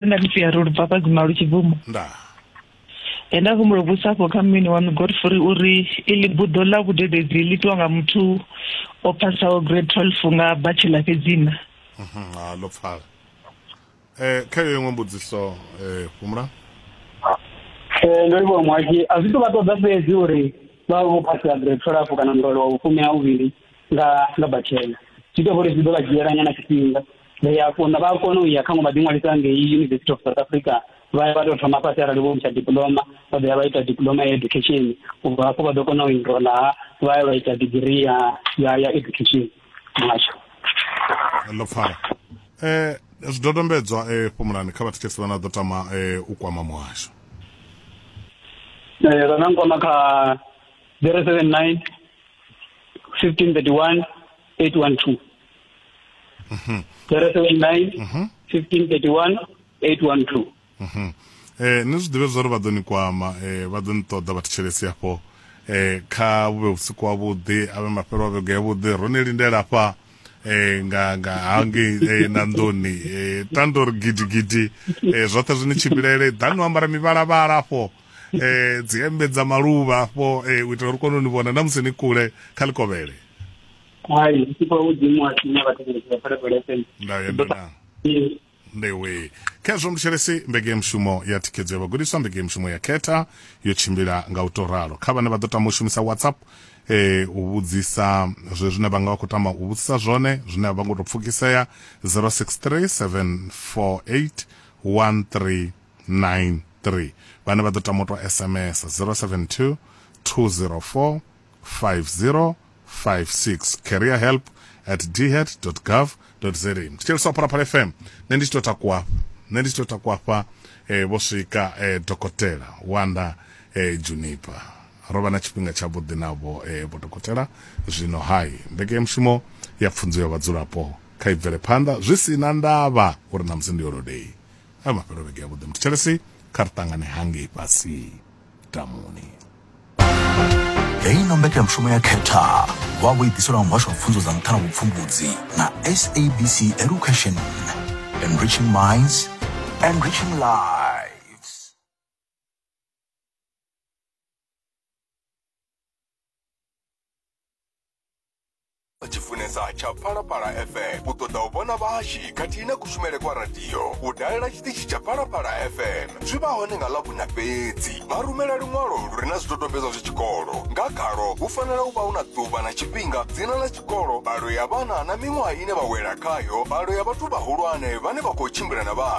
nda mfi ya rulu papa guma lu tshibvumo nda e nda humbula vhusa afho kha mmini wanu godfrey uri iḽi buḓo ḽa vhudededzi ḽi itiwa nga muthu o phasaho grade twelve nga batshela fhedzina mhm, ha ḽo pfala um kha yo iṅwe mbudziso um fhumula um ndo livhuwa muhaki a zwi to vha ṱoḓa fhedzi uri vha vha vho phasela grade twelve kana murole wa vhufumi ha vhuvhili nga nga bachelor zwi ita uri zwi ḓo vha dzhiela nyana tshifhinga vha ya kona vha kona u ya kha ngo vha ḓiṅwalisa ngei university of south africa vha ya vha tou thoma fhasi arali vho ntsha diploma vha ḓo ya vha ita diploma ya education ubva hafho vha ḓo kona u enrola vha ya vha ita degree ya ya ya education muhasho ḽo pfala eh zwidodombedzwa eh fhumulani kha vhathetshelesi vhane vha ḓo tama eh u kwama muhasho eh vha nga nkwama kha 079 1531 812 Mhm. 079 Mhm. 1531 812 Mhm. eh ni zwi ḓivhe zwori vha ḓo ni kwama eh vha ḓo ni ṱoḓa vha thetshelesi hafho eh kha vhuvhe vhusiku wavhuḓi avhe mafhelo a vhege yavhuḓi ro ni lindela hafha eh nga nga hangei eh, na nḓuni eh tandori gidigidi eh zwoṱhe zwi ni tshimbilele ḓani u ambara mivhalavhala hafho eh dzi hembe dza maluvha afho eh u itela uri kone u ni vhona na musi ni kule kha likovhele hai sipo u dzimu a tshinya vhathu vha tshinya phala phala FM nda yenda na ndewe khezwo mutshelesi mbege ya mushumo ya thikhedzo ya vhagudiswa mbege ya mushumo ya khetha yo tshimbila nga u to ralo kha vhane vha ḓo tama u shumisa whatsapp eh u vhudzisa zwe zwine vha nga vha khou tama u vhudzisa zwone zwine a vha ngo to pfukisea 063 748 13 082-666-993 vhane vha ḓo tama u tou sms 072 204 5056 career help at dhead.gov.za tshitsheliswa phalaphala fm nṋe ndi tshi tou takuwa afha nṋe ndi tshi tou takuwa afha eh, vho swika eh, dokotela wanda eh, junipa ro vha na tshifhinga tshavhuḓi navho eh, vho dokotela zwino hai mbekanyamushumo ya pfunzo ya vhadzulapo kha i bvele phanḓa zwi si na ndavha uri ṋamusi ndi yolodei a mafhelo vhege yavhuḓi muthetshelesi kha ri ṱangane hangei fhasi tamuni heyi no mbekanyamushumo ya khetha wa vho i ḓiselwa muhasho wa pfunzo dza nṱha na vhupfumbudzi na sabc education enriching minds enriching life vha tshi funesa tsha phalaphala fm u ṱoḓa u vhona vhahashu khathihi na kushumele kwa radio u dalela tshiṱitshi tsha phalaphala fm zwi vha hone nga ḽavhuna fhedzi vha rumela luṅwalo lu re na zwidodombedzwa zwa tshikolo nga khalo hu fanela u vha hu na ḓuvha na tshifhinga dzina ḽa tshikolo mbalo ya vhana na miṅwaha ine vha wela khayo mbalo ya vhathu vhahulwane vhane vha khou tshimbila na vhana